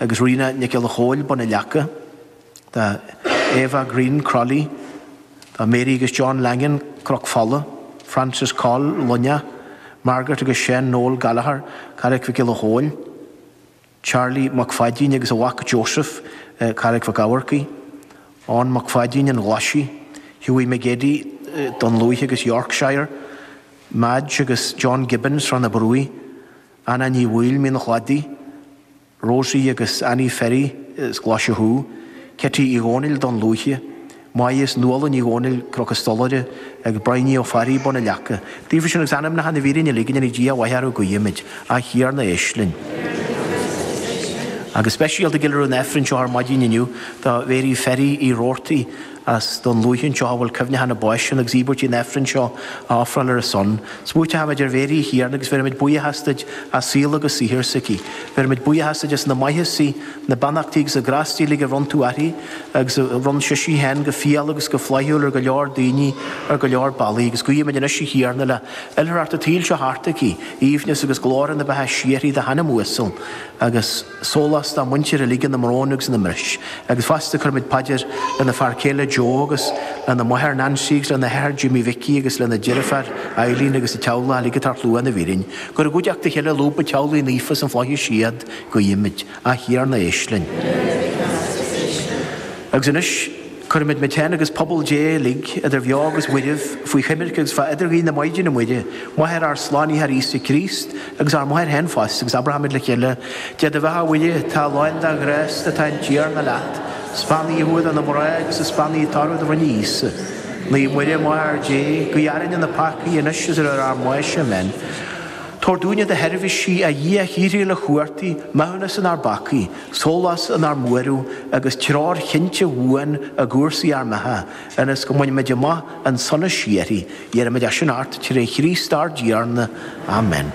agus Ríona Nic Giolla Chomhaill, Bun an Leaca, do Eva Green, Crolly, do Mary agus John Langan, Cnoc Fola, Francis Coll, Luinneach, Margaret agus Seán Noel Gallagher, Carraic Mhic Giolla Chomhaill, Charlie Mac Pháidín agus a mhac Joseph, Carraic Mhic Eachmharcaigh, Eoin Mac Pháidín, An Ghlaisigh, Hughie McGeady, Dún Lúiche agus Yorkshire, Madge agus John Gibbons, Srath na Bruaí, Anna Ní Bhaoill, Mín an Chladaigh, Rosie agus Annie Ferry, as Glaise Chú. Ceiti Uí Dhónaill, Dún Lúiche. May is Nuala Ní Dhónaill, Cnoc an Stolaire, agus Briany Ó Fearraigh, Bun an Leaca. Daofa sin agus anamacha na bhfíréan uilig anois Dia a Mhaighdean guímid, A Thiarna éist linn. Agus speisialta gile ar an Aifreann seo ar maidin inniu do Mhary Ferry, Uí Roarty, as Dún Lúiche anseo a bhfuil cuimhneachán a báis ann agus íobairt an Aifrinn seo á ofráil ar a son. Smaointímid ar Mhary a Thiarna agus bheirimid buíochas duit as saol agus saothar s'aici. Bheirimid buíochas duit as na maitheasaí, na beannachtaí agus na grástaí uilig a bhronn tú uirthi agus a bhronn sisi féin go fial agus go flaithiúil ar go leor daoine ar go leor bealaí agus guímid anois a Thiarna le hoilithreacht a tsaoil seo thart aici, aoibhneas agus glóire na beatha síoraí dá hanam uasal agus. sólás dá muintir uilig ina mbrón agus ina mbris. Agus fosta cuirimid paidir lena fear céile Joe agus lena máthair Nancy agus lena hathair Jimmy Mhicí agus lena deirfiúr Eileen agus a teaghlach uilig atá ar shlua na bhfíréan. Gurab i gcuideachta a chéile i lúb an Teaghlaigh Naofa sna Flaithis iad guímid. A Thiarna éist linn. Agus anois. Cuirimid muid féin agus pobal Dé uilig, idir bheo agus mhairbh, faoi choimirce agus fá idirghuí na Maighdine Muire, Máthair ár Slánaitheoir Íosa Críost, agus ár Máthair féin fosta, agus abróimid le chéile, Dia do bheatha a Mhuire, tá lán de ghrásta, tá an Tiarna leat, 's beannaithe thú idir na mná agus is beannaithe toradh do bhroinne Íosa. Naomh Muire, Máthair Dé, guigh orainn na peacaigh, anois is ar uair ár mbáis. Amen. Tabhair dúinne, do sheirbhísigh, a Dhia shíoraí uilechumhachtaigh maithiúnas inár bpeacaí, Sólás inár mbuaireamh agus treoir chinnte bhuan i gcúrsaí ár mbeatha, ionas go mbainfimid amach an sonas síoraí. Iarraimid é sin ort tré Chríost ár dTiarna. Amen.